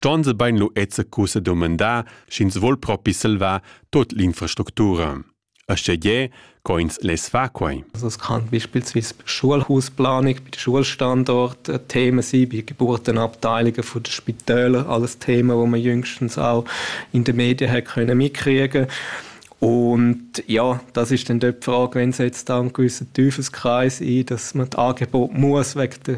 Gions e bein lu ezza cussa dumandar, sch'ins vol propi salvar tut l'infrastructura. Aschia gie, co ins less far quei. Also es kann beispielsweise bei Schulhausplanung, bei den Schulstandort äh, Themen sein, bei Geburtenabteilungen von den Spitälern, alles Themen, die man jüngstens auch in den Medien hat können mitkriegen und ja, das ist dann dort die Frage, wenn setzt da einen gewissen Teufelskreis ein, dass man das Angebot muss wegen der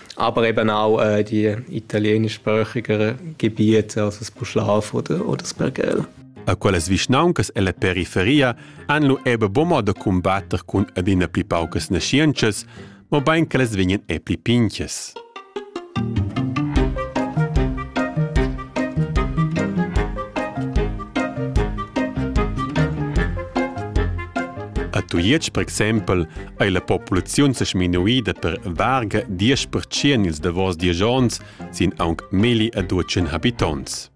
Aber eben auch äh, die italienischsprachiger Gebiete, also das Puschlav oder, oder das Pergel. A quellas vischnauncas ella periferia han lu ebe buca da cumbatter cun adina pli paucas naschientschas, mobein che las vegnan e pli pinchas. A Tujetsch, per exempel, ei la populaziun sa sminuida per varga 10% ils davos diesch onns sin aunc milli e duecin habitonts.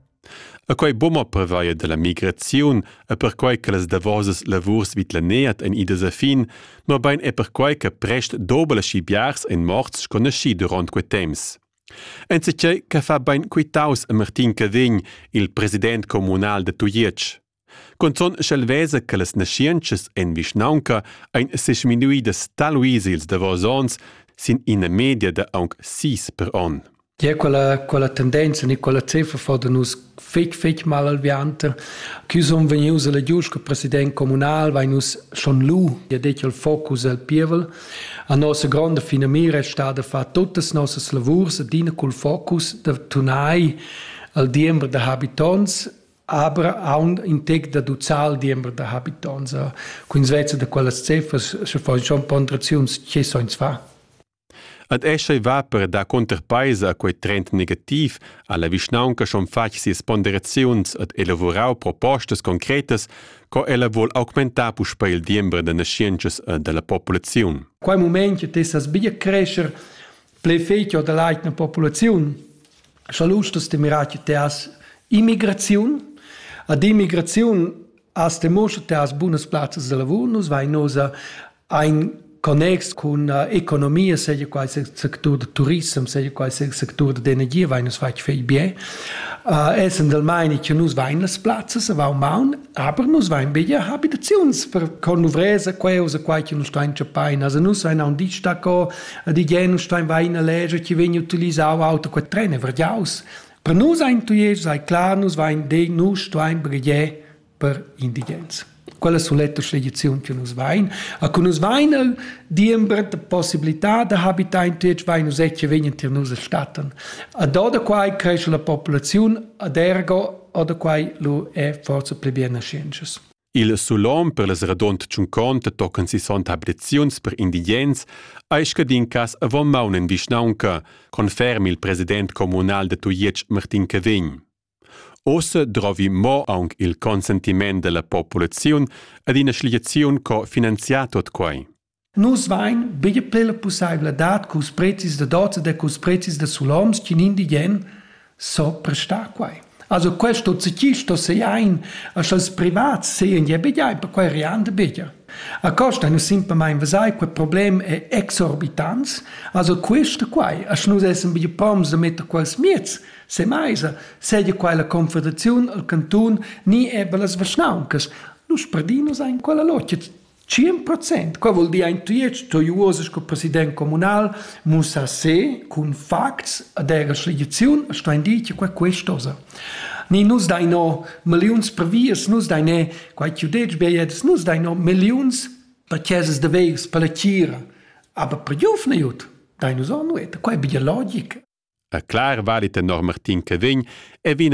E quei bumma prevaia dalla migraziun e perquai che las davosas lavurs vid la neat ein idas a fin, mobein è perquai che prest dobel aschi biars ein morts sco naschi durant quei temps. Enzatgei che fa bein quitaus a Martin Cavegn, il president communal da Tujetsch. Cunzun sch'el vesa che las naschientschas en vischnaunca ein sesminuidas talvis ils davos onns sin ina media da aunc sis per onn. Gia quella, quella tendenza ni quella cifra fa da nus fetg, fetg mal alviante. Chi sun vegnius alla giust col president comunal, vai nus schon lu, ja detg il focus al pievel. A nossa gronda fina mira è stata far tuttas nossas lavurs adina col focus da tunai al diember da habitants aber aund in tec da ducal diember da habitonts cun svezza da quellas ceffas sche fa schon ponderaziuns che soins fa Ad escha va per da conterpaisa quei trend negativ alla vischnaunca schon fatg sias ponderaziuns ad elavorau propostas concretas co ella vuol augmentar puspei il diember da nascientschas e dalla populaziun. Quei moment che tessas bia crescer ple fetio da leitna populaziun, scha lustas de mirar che te has immigraziun, ad immigraziun as te moscha te has bunas plazzas de lavur, nus vai nosa ein connex con uh, economia, seja qual sia sectur de turism, seja qual sia sectur de energia, vai nus fai fei bien. Uh, essend del meine che nus vain las plazzas a vau maun, Aber nus vein bia habitaziuns per conluvresa queusa quai che nus stein chapain. Also nus vein aun ditg daco, ad igen nus stein vein a leger che vegn utilisau auto qua trene verdiaus. Per nus ein tuies sei klar, nus vein de nus stein begie per indigens. Quella soletta sceglizione che nus vein. A cu nus vein el diember de possibilità da habitar in tuies vein nus etche vegn tier nus statten. A do da quai cresce la popolazione ad ergo oder quai lu è forse pli bien nascienschas. Il sulom per les radont tschunconte tocan si sont abreziuns per indigens ei scadin cas avon maun en vischnaunca, conferm il president communal de Tujetsch Martin Cavegn. Osse drovi mo aunc il consentiment della populaziun ad ina schliaziun co finanziar tot quai. Nus vain bger plü la pussaivladad culs prezis da dozza e culs prezis da suloms ch'ün indigen s'ho prestà quai. Also quest ozechi sto seain a cha'ls privats sean ja bgiai perquai rian da bger. A costa nu simplamaing vesai quel problem è exorbitants, also quista quai, a sch'nus essan bger poms da metter quels miez se maisa, segia quai la Confederaziun, il cantun, ni eir las vischnauncas, nus perdin nus aint quella logia. Tschien procent, qua vuol dir ein tuiet toi uosa sco president comunal, mussa se cun facts ad era schligiziun a stein dir che qua quest'osa. Ni nus dai no milliuns per vias, nus dai ne quai chiu detg beiet, nus dai no milliuns per chesas de veirs per la tira, aber per juf ne jut, dai nus on nueta, quai bia logic. A clar valit enorm Martin che vegn e vina